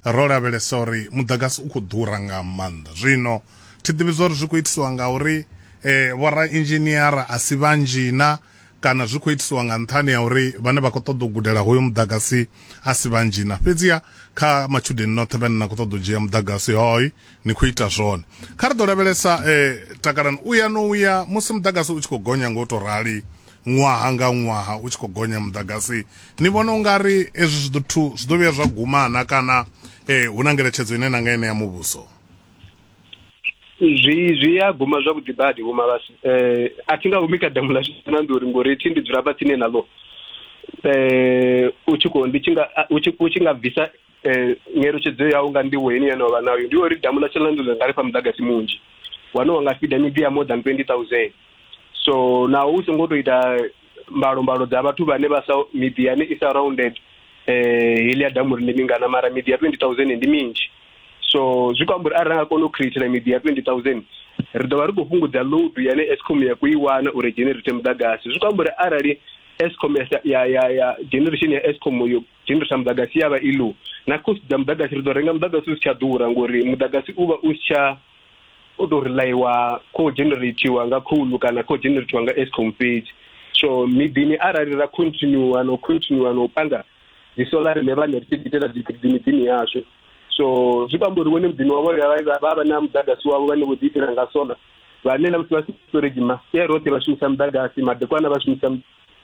Ro lavhelesa uri muḓagasi u khou ḓura nga maanḓa zwino thi ḓivhi zwa uri zwi khou itisiwa nga uri um eh, vhorainzhiniara a si vhanzhi na kana zwi khou itisiwa nga nṱhani ya uri vhane vha khou ṱoḓa u gudela hoyo muḓagasi a si vhanzhi na fhedziha kha matshudeni noṱhe vhane na khou ṱoḓa u dzhia muḓagasi hoy ni khou ita zwone kha ri ḓo lavhelesa um takalani u ya no u ya musi muḓagasi u tshi khou gonya nga u tou rali ṅwaha nga ṅwaha u tshi khou gonya muḓagasi ni vhona u nga ri ezwi zwi ḓo zwi ḓo vhuya zwa gumana kana um hu na ngeletshedzo ine na nga ine ya muvhuso zwi zwi a guma zwavhuḓi badi vho malasi um a thi nga humi kha damu ḽa na ndi uri ngori thi ndi dzula fhatsini naḽo um u tshi khou ndi tshi nga u tshi nga bvisa eh, nyeletshedzo yau nga nḓivho heni yane wavha nayo ndi uri damu ḽa tshilandulo nga ri fha muḓagasi munzhi wane wa nga fida miḓi ya more than 20000 so naho u songo tou ita mbalombalo dza vhathu vhane vha sa miḓi yane i surrounded eh heli ya damu ri ndi mingana mara miḓi ya 20000 ndi minzhi so zwi khou amba uri arali nga kona u createla miḓi ya 20000 ri ḓo vha ri khou fhungudza load yane escom ya khou i wana uri generate muḓagasi zwi khou amba uri arali escom ya ya ya generation ya escom yo tshendo tsha muḓagasi ya vha i low na cost dza muḓagasi ri ḓo renga muḓagasi u si tsha ḓura ngori muḓagasi u vha u si tsha u tou relaiwa kho generatiwa nga khoulu kana kho generatiwa nga escom fhedzi so miḓini arali ra continua no continua no panga dzi solar ne vhane ri tshi itela dzi miḓini yashu so zwi vha mbori wone muḓini wavho vha vha na muḓagasi wavho vhane vho ḓi itela nga solar vhane na musi vha si storage ma ye roṱhe vha shumisa muḓagasi madekwana vha shumisa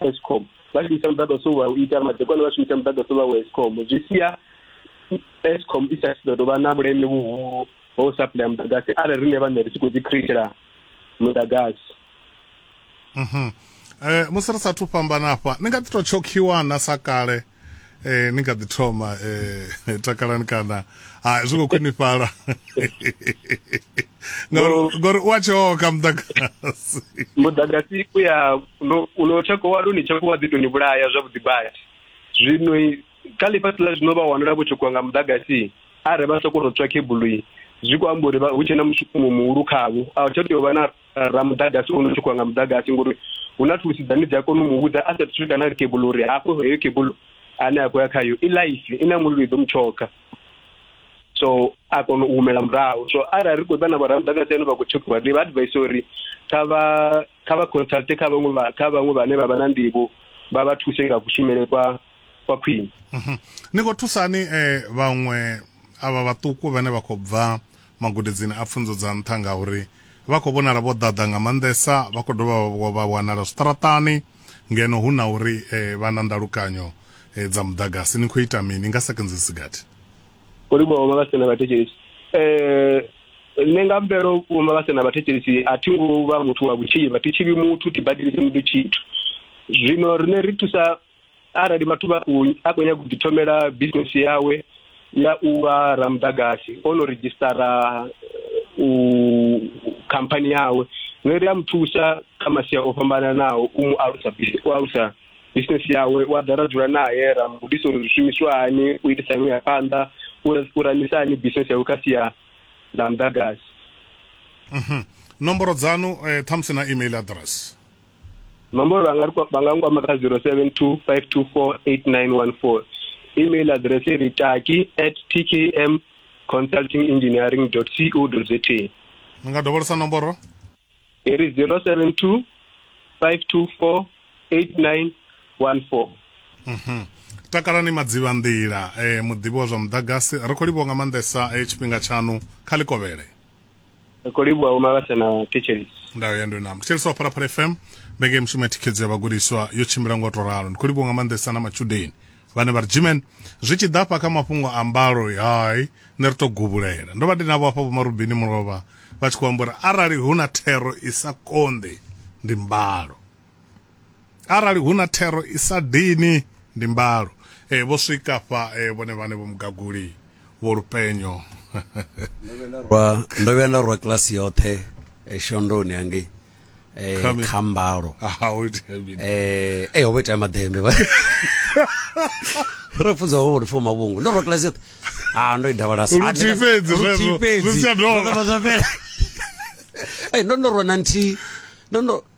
escom vha tshi isa muḓagasi wa u ita madekwana vha shumisa muḓagasi wa wa escom zwi sia escom i sa ḓo dovha na vhuleme vhuhulu ho supply muḓagasi arali riṋe vhaṋe ri tshi khou ḓi createla muḓagasi mhm. eh, musi ri sathu fhambana afha ni nga ḓi tou tshokhiwa na sa kale eh ni kha ḓi thoma eh takalani kana ha zwi khou khwinifhala ngori u a tshoka muḓagasi muḓagasi u ya u no tshako wa luni tshako wa ḓi tou ni vhulaya zwavhuḓi badi zwino kha ḽifhasi ḽa zwino vha wanala vho tshokiwa nga muḓagasi a re vha sokou tou tswa khebulu zwi khou amba uri hu tshe na mushumo muhulu khavho a tsha tea u vha na ramudagasi ono tshi khou nga mudagasi ngori hu na thulusi dzane dzi a kona u mu vhudza a sa thu kana ri kebulo uri hafho heyo kebulo ane a khou ya khayo i life i na mulilo i ḓo mu tshoka so a kona u humela murahu so arali ri khou ḓa na vhoramudagasi ane vha khou tshekiwa ndi vha advise uri kha vha kha vha consulte kha vhaṅwe kha vhaṅwe vhane vha vha na nḓivho vha vha thuse nga kushumele kwa kwa khwine mhm. ni khou thusani um eh, vhaṅwe avha vhaṱuku vhane vha khou bva magudedzini a pfunzo dza nṱha ngauri vha khou vhonala vho ḓaḓa nga maanḓesa vha khou dovha vha wanala zwiṱaraṱani ngeno hu na uri um vha na ndalukanyo um dza muḓagasi ni khou ita mini nga sekenzi sigathi olibwao mavasena vhathetshelesi um nṋe nga mvelo mavasena vhathetshelesi a thi ngo vha muthu wa vhutshivha thi tshivhi muthu thi badelisi muthu tshithu zwino rine ri thusa arali mathuba a khou a khou nyaga u ḓithomela bisinesi yawe ya u vha ramudagasi o no redzhisitara eh, u khamphani yawe zwine ri a mu thusa kha masia o fhambananaho u mu alusa bisi- u alusa bisinesi yawe u a ḓa ra dzula naye ra mu gudisa uri zwi shumiswa hani u itisa hani u ya phanḓa u ra- u ramisa hani bisinesi yawe kha sia ḽa mudagasi nomboro dzanu eh, ṱhamusi na email address mamboro vha nga ri kwa- vha nga nkwama kha 0725248914 email address ri taki at tkm consulting engineering co za ni nga dovholesa nomboro i ri 072 524 8914 Mhm. takalani madziva nḓila eh, muḓivhi wa zwa muḓagasi ri khou livhuwa nga maanḓesa eh, tshifhinga tshaṋu kha ḽikovhele ri khou livhuwa vho mavhasa na thetshelisi ndayo ya ndo namba thetshelisi wa phalaphala fm mbenge mishumo ya thikhedzo ya vhagudiswa yo tshimbila ngo to ralo ndi khou livhuwa nga maanḓesa na matshudeni vhane vha ri jimen zwi tshi ḓa afha kha mafhungo a mbalo hai nṋe ri to gubulela ndo vha ndi navho afha vhomarubini mulovha vha tshi khou amba uri arali hu na thero i sa konḓi ndi mbalo arali hu na thero i sa dini ndi mbalo e, vho swika fha e, vhone vhane vho mugaguli vho lupenyo ndo vhuya nda rwa kilasi yoṱhe e, shondoni hangei um kha mbalo um e ho vha itea maḓembe ro funza ho uri foma vhungu ndo rwa kilasi yoṱhe a ndo i davalasa ndo ndo rwa na nthihi ndo ndo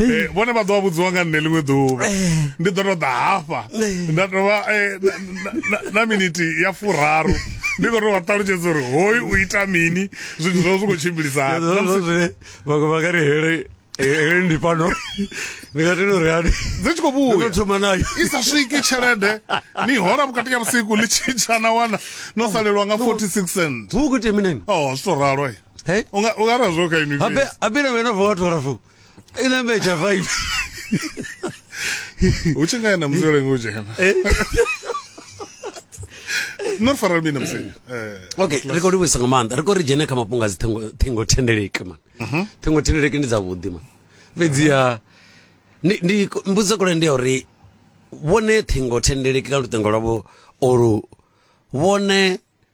Eh, vhone vha ḓoa vhudziwa nga nṋe ḽiṅwe ḓuvha eh. ndi ḓo to ḓa hafha eh. nda tovha na miniti ya furaru ndi khou to vha ṱalutshedza uri hoyu u ita mini zwithu zwo zwi khou tshimbilisana vhaṅwe vha nga ri hele hele ndi fhano ndi nga tenda uri ani dzi tshi khou vhuya thoma nayo i sa swiki tshelede ni hola vhukati ya vhusiku ḽi tshintsha na wana no salelwa nga 46 cent hu khou tea mini o oh, zwi to ralo unga unga razwo kha inwi abe abe na wena vho thola fo En dan weet je vijf. Hoe je ga je naar Missouri hoe je no faral mina msenya eh. okay ri khou livhuisa nga maanḓa ri khou ri dzhene kha mafhungo a dzi ṱhingo thendeleki man mhm. ṱhingo thendeleki ndi dzavhuḓi man fhedziha ndi mbudziso kule ndi ya uri vhone ṱhingo thendeleki ka luṱingo lwavho olu vhone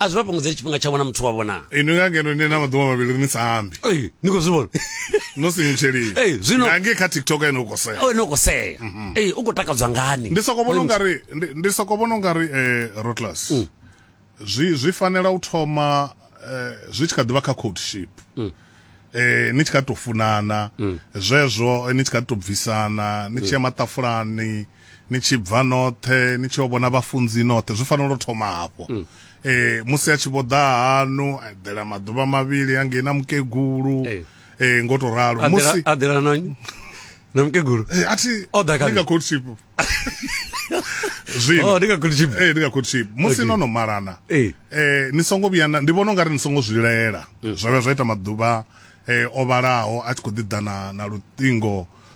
a zwi vha fhungudzeli tshifhinga tshavho na muthu wavho naa inwi nga ngeno ni na maḓuvha mavhili ni sa ambi Ei, ni khou zwi vhona no sinyutsheliwa Ei, zwino- nga ngei kha tiktok ene u khou sea o ne u khou sea Ei, u khou takadzwa ngani Mhm. ndi soko vhona ungari ndi- ndi soko vhona ungari eh rotless Mm. zwi zwi fanela u thoma eh, zwi tshi kha ḓivha kha courtship Mm. eh ni tshi kha ḓi to funana zwezwo eh, ni tshi kha ḓi to bvisana ni tshi ya maṱafulani ni tshi bva noṱhe ni tshi yo vhona vhafunzi noṱhe zwi fanela u thoma hafho mm. eh musi a tshi vho ḓa hanu a eḓela maḓuvha mavhili angei na mukegulu eh, eh ngo to ralo musi a ḓela na na mukegulu eh athi o ḓa kha court ship zwino oh, ndi nga court ship eh ndi nga court ship musi no no malana eh eh ni songo vhuya ndi vhona ungari ni songo zwilela mm. zwa vha zwa ita maḓuvha eh o vhalaho a tshi kho ḓi ḓa na na luṱingo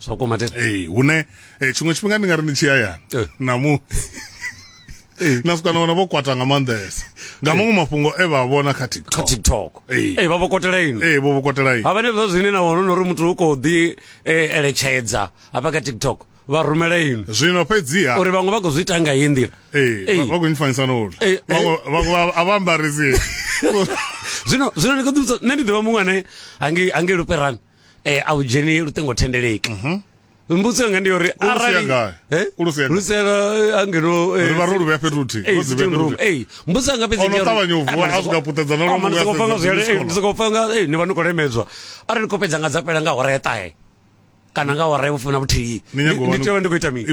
zwa kwama tete ee hune eh, tshiṅwe tshifhinga ndi nga ri ndi tshi hayani Eh. na mu na swika na wana vho kwata nga maanḓesa nga maṅwe mafhungo e vha a vhona kha kha tiktok tiktok Eh. Eh, vha vho kotela ino ee vho vho kwatela ini havha nezwo zwine na wana uri muthu u khou ḓi eh, eletshedza hafha kha tiktok vha rumela ino zwino fhedziha uri vhaṅwe vha khou zwi ita nga iyi nḓila ee Eh. vha khou nyifanisa na uri Eh, eh. Vhaṅwe- vhaṅwe a vha ambarisi zwino zwino ndi khou ḓivhudza nṋe ndi ḓivha muṅwe ane hange hange luperani eh a u dzheni luṱingo thendeleki mhm. mbudziso yanga ndi yo uri arali eh? lusela eh, angeno eh, vha ro luvhea fhethu huthihi mbudziso yanga fhedzisokopanga ni vha ni khou lemedzwa arali ni khou fhedza nga dza fhela nga hora ya ṱahe kana nga hora ya vhufumi na vhuthihi ni tea vha ndi khou ita mini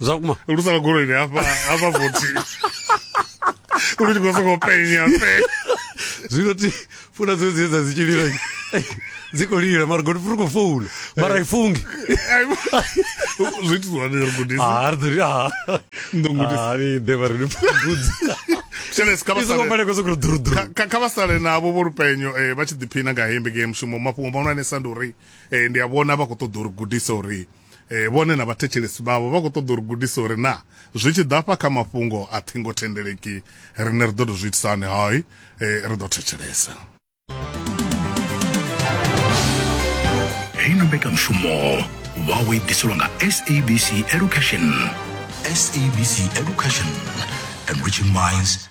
zwa kuma lu sala goloi ni hafha hafha vothi lu tshi khou sokou penya pe zwino ti funa dzine dzine dza dzi tshi lila dzi khou lila mara godi furi khou founa mara i fungi zwi itiswa ni ri gudisa ah ri ḓo ri ah ndo gudisa ah ni ḓe vha ri ni pfudzi shele ska ba i songo sale fanela kozokuri ḓuruḓuru Kha- kha- kha vha sale navho vho lupenyo eh, vha tshi ḓiphina nga hembe ngei mushumo mafhungo mahulwanesa ndi uri eh, ndi a vhona vha khou ṱoḓa uri gudisa uri E, vhone na vhathetshelesi vhavho vha khou ṱoḓa uri gudisa uri na zwi tshi ḓafha kha mafhungo a thingo thendeleki rine ri ḓo tou zwi itisa hani hai e, ri ḓo thetshelesa heino mbekanyamushumo vha wo ibiselwa nga sabc education sabc education enriching minds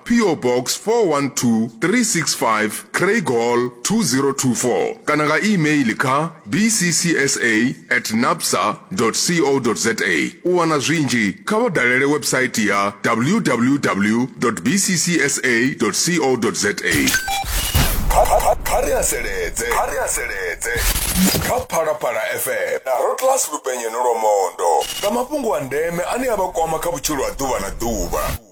PO Box 412365 Craighall 2024 kana nga e-mail kha bccsa at napsa co za. U wana zwinzhi kha vha dalele website ya www bccsa co za. Kha ri haseledze kha ri haseledze kha Phalaphala FM na Rotlas Lupenyeni Lwamondo nga mafhungo a ndeme ane a vha kwama kha vhutshilo ha ḓuvha na ḓuvha.